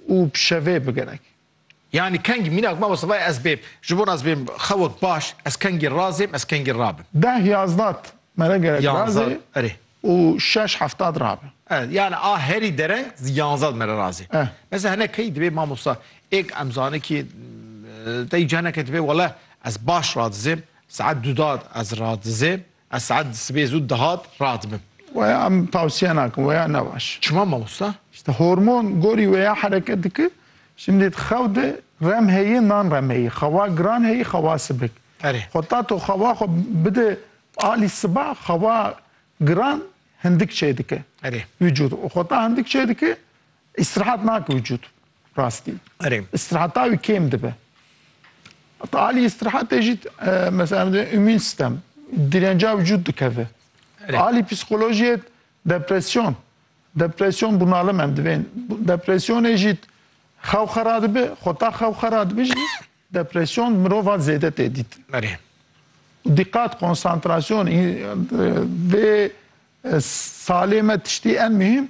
û bi şevê bigenek. Yanî kengî mînak ma wesivayê ez bêm. Ji bo ez bêm xewek baş, ez kengî razêm, ez kengî rabim. Deh yazdat mere gerek razê û şeş heftat rabe. Erê, yanî a herî dereng yanzad mere razê. Mesela hinek keyî dibê mamosta êk em zanê kî tey caneke dibê wele ez baş radizêm, saet dudat ez radizêm. Esad sibê zû dihat radibim. Weya em tavsiye nakin weya ne baş. Çima mamosta? İşte hormon gorî weya hereket dike. Şimdi di xew de rem heye nan rem heye. Xewa giran heye xewa sibik. Ferê. Xwe ta to xewa xwe bide alî siba xewa giran hindik çêdike. Erê. Vücud. Xwe ta hindik çêdike îstirahat nake vücud. Rastî. Erê. Îstiraheta wî kêm dibe. Heta alî îstirahatê jî mesela dê îmîn stem dirênca vücûd dikeve. Alî psîkolojiyê depresyon. Depresyon bunalime em divên. Depresyonê jî xew xera dibe, xweta xew xera dibe jî depresyon mirova zêde tê dît. Erê. Dîqat, konsantrasyon dê salê me tiştî en muhîm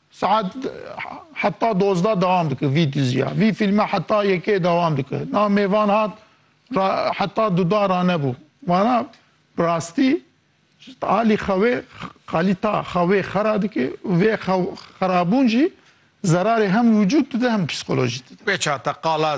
Saet heta dozda dewam dike vî diziya. Vî fîlme heta yekê dewam dike. Na mêvan hat ra heta duda ranebû. Vana bi rastî alî xewê kalîta xewê xera dike û vê xerabûn jî zerarê hem wicûd dide hem psîkolojî dide. Wê çata qala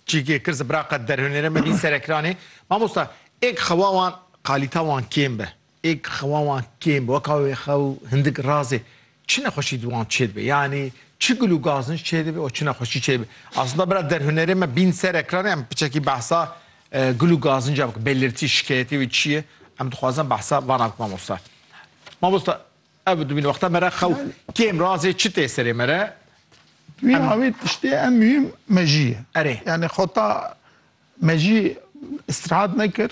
cîgê kir zibraqe derhunêre me vî serekranê. Mamosta êk xewa wan kalîta wan kêm be. Êk xewa wan kêm weka wê xew hindik razê çi nexweşî di wan çêdibe yanî çi gul û gaznij çêdibe û çi nexweşî çêdibe. Aslında bira derhunerê me bîn ser ekranê em piçekî behsa gul û gazinca bikin. Belirtî, şikeyetê wê çi ye? Em dixwazin behsa van bikin mamosta. Mamosta ev dibîne wexta me re xew kêm razê çi tê serê me re? Wî awê tiştê em mihîm mejî ye. Erê. Yanî xweta mejî îstîrehat nekir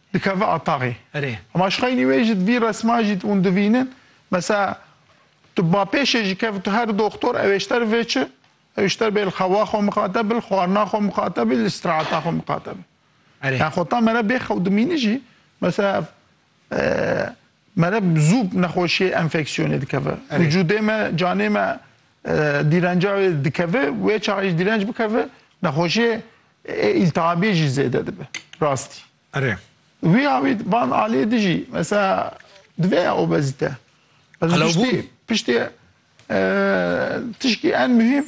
dikeve ataxê. Erê. Hema şixaynî wê jî di vî resman jî hûn divînin. Mesela tu bapêşê jî kevî tu her doxtor ew êşter vê çi? Ew êşter bê li xewa xwe miqate bi, li xwarina xwe miqate bi, li îstîrahata xwe miqate bi. Erê. Yani xwe ta mere bê xew dimînî jî mesela ev Meriv zû nexweşiyê enfeksiyonê dikeve. Vücudê me, canê me dîrenca wê dikeve. Wê çaxê jî dîrenc bikeve, nexweşiyê ê îltihabiyê jî zêde dibe. Rastî. Erê. Wî awî van aliyê di jî mesela divê ya obezîte. Qelewbûn. Piştî tişkî en muhîm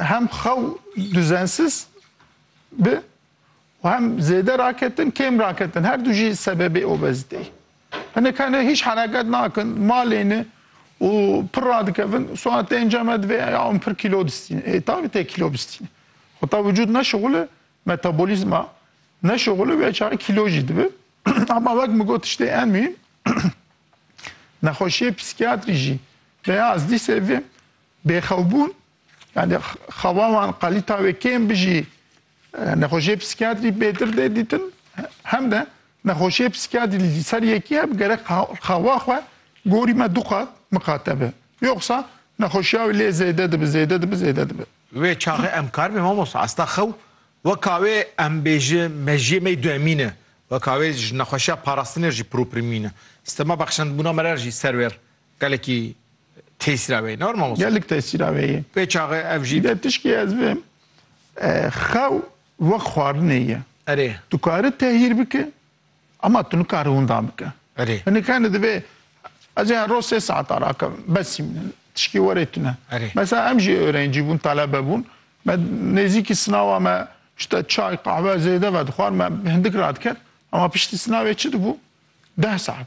hem xew duzensiz bi û hem zêde raketin kêm raketin her du jî sebebê obezîteyê ye. Hinek hene hîç hereket nakin, malê ne û pir radikevin, sona tê înca me divê ya hûn pir kîlo distînin. Ê taybî tê kîlo bistînin. Heta wicûd nexşixul e, metabolîzma nexşixul e wê çaxê kîlo jî dibe. Ema wek min got tiştê en muhîm nexweşiyê psîkiyatrî jî rêya ez dîsê vê bêxewbûn yanî xewa wan qelîta wê kêm bijî Nexweşiyê psîkiyatrî bêtir tê dîtin hem de nexweşiyê psîkiyatrî li ser yekî hebe gerek xewa xwe gorî me du qat miqate be. Yoxsa nexweşiya wî lê zêde dibe, zêde dibe, zêde dibe. Wê çaxê em kar bê mamosta. Esta xew weka wê em bêje mejiyê me duemîn e. Weka wê ji nexweşiya parastinê jî proprimîn e. Stema bexşendbûna me re jî ser wêr Gelekî tesîra wê hene mamoste. Gelek tesîra wê ye. Wê çaxê ev jî. Dide tişkî ez bim xew wek xwarinê ye. Erê. Tu kari tehîr bike ema tu nikari winda bike. Erê. Hinek hene divê ez ê her roz sê saet ara akevim besî min e tişkî werê tune. Erê. Mesela em jî êrencî bûn telebe bûn me nêzîkî sinawa me işte çay qahwe zêde vedixwar me hindik radiket ema piştî sinavê çi dibû deh saet.